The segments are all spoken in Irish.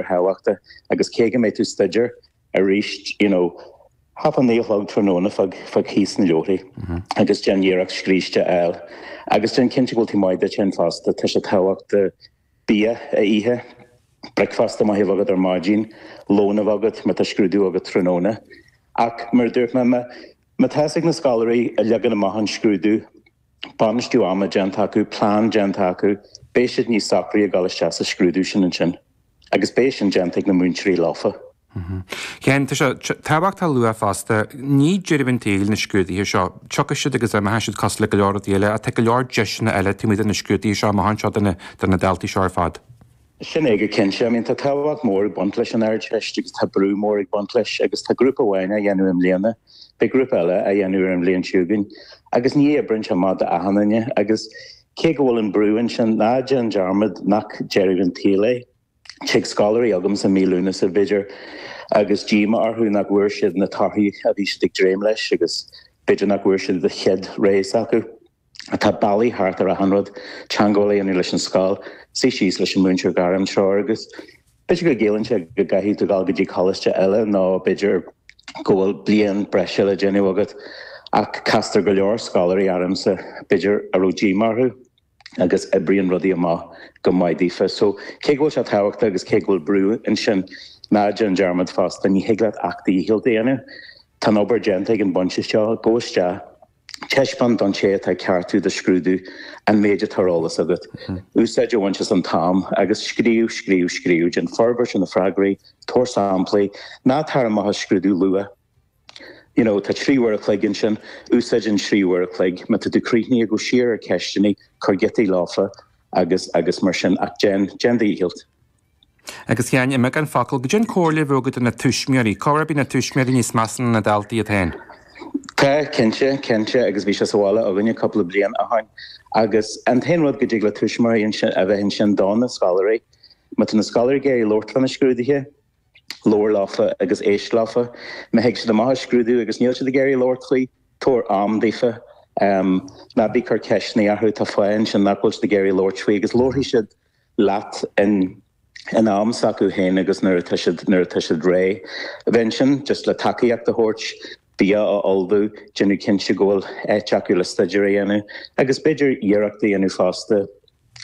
ar thábhachta agus cé go mbeidh tú ag staidéar arís you know hocht a naoi a chlog tráthnóna fág fág síos na leabharthaí agus déan iarracht scríste a fháil agus déan cinnte go bhfuil tú maith duit fhéin fosta tá sé tábhachtach bia a ithe bricfeasta maith a bheith agat ar maidin lón a bheith agat má tá scrúdú agat tráthnóna ach mar a dúirt mé má má tá a fhios ag na scoláirí leagan amach an scrúdú bainistiú ama déanta acu, plean déanta acu, beidh siad níos socraí ag dul isteach sa scrúdú sin ansin agus beidh sin déanta ag na múinteoirí leofa. A Sheáin, tá sé tábhachtach a lua fosta, ní deireadh an tsaoil na scrúduithe seo. Tiocfaidh siad agus imeoidh siad cosúil le go leor rudaí eile ach tá go leor deiseanna eile taobh amuigh de na scrúduithe seo amuigh anseo do na daltaí seo ar fad. Sin é go cinnte. I mean, tá tábhacht mhór ag baint leis an Ardteist agus tá brú mór ag baint leis agus tá grúpa amháin á dhéanamh i mbliana, beidh grúpa eile á dhéanamh ar an bhliain seo chugainn agus ní oibríonn sé amach do achan duine agus cé go bhfuil an brú ansin, ná déan dearmad nach deireadh an tsaoil é. Tig scoláirí chugamsa mí Lúnasa, b'fhéidir, agus díomá orthu nach bhfuair siad na torthaí a bhí siad ag dréim leis agus b'fhéidir nach bhfuair siad an chéad rogha s'acu. Tá bealaí thart ar achan rud, teagmháil a dhéanamh leis an scoil, suí síos leis an múinteoir gairmthreoir agus b'fhéidir go gciallaíonn sé go gcaithfidh tú dul go dtí coláiste eile nó b'fhéidir go bhfuil bliain breise le déanamh agat ach castar go leor scoláirí ormsa, b'fhéidir, a raibh díomá orthu agus oibríonn rudaí amach go maith daofa. So, cé go bhfuil sé tábhachtach agus cé go bhfuil brú ansin, ná déan dearmad fosta, ní thig leat ach do dhícheall a dhéanamh. Tá an obair déanta ag an bpointe seo, gabh isteach. Taispeáin don té atá ag ceartú do scrúdú an méid atá ar eolas agat. Úsáid a bhaint as an t-am agus scríobh, scríobh, scríobh. Déan forbairt ar na freagraí, tabhair samplaí. Ná tar amach as scrúdú luath. You know, tá trí uair a chloig ansin, úsáid an trí uair a chloig. Má tá tú críochnaithe, gabh siar ar cheisteanna, cuir giotaí leofa agus, agus mar sin. Ach déan, déan do dhícheall. Agus a Sheáin i mbeagán focal caidé an chomhairle a bheadh agat do na tuismitheoirí. Corruair na tuismitheoirí níos measa ná na daltaí iad féin? Tá, cinnte, cinnte agus bhí sé sa bhaile againne cúpla bliain ó shoin. Agus an t-aon rud go dtig le tuismitheoirí ansin a bheith ansin do na scoláirí. Má tá na scoláirí ag iarraidh labhairt fá na scrúduithe, labhair leofa agus éist leofa. Má thig siad amach as scrúdú agus níl siad ag iarraidh labhairt faoi, tabhair am daofa. Ná bí ag cur ceisteanna orthu, tá fáth ansin nach bhfuil siad ag iarraidh labhairt faoi agus labharfaidh siad. leat in in am s'acu féin agus nuair atá siad nuair atá siad réidh. Bheith ansin just le tacaíocht a thabhairt, bia a ullmhú, déanamh cinnte go bhfuil áit acu le staidéar a dhéanamh agus b'fhéidir iarracht a dhéanamh fosta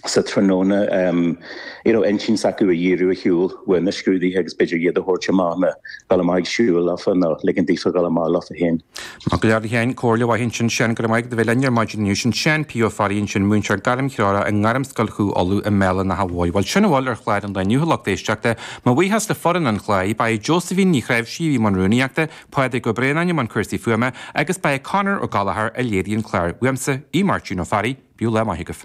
sa tráthnóna em you know intinn s'acu a dhíriú ar shiúl uaidh na scrúduithe agus b'fhéidir iad a thabhairt amach nó dul amach ag siúl leofa nó ligint daofa dul amach leofa féin. Maith go leor a Sheáin comhairle mhaith ansin Seán go raibh maith agat as a bheith linn ar maidin inniu. Sin Seán P. Ó Fearraigh ansin, múinteoir gairmthreorach i nGairmscoil Chú Uladh i mBéal an Átha Móir. Bhuel sin a bhfuil ar chlár an lae inniu a lucht éisteachta. Mo bhuíochas le foireann an chláir. Ba é Josephine Ní Chráimhsí a bhí i mbun rúnaíochta, Pádraig Ó Braonáin i mbun cúrsaí fuaime agus ba é Conor Ó Gallachóir a léirigh an clár. Uaimse, Aodh Máirtín Ó Fearraigh, bíodh lá maith agaibh.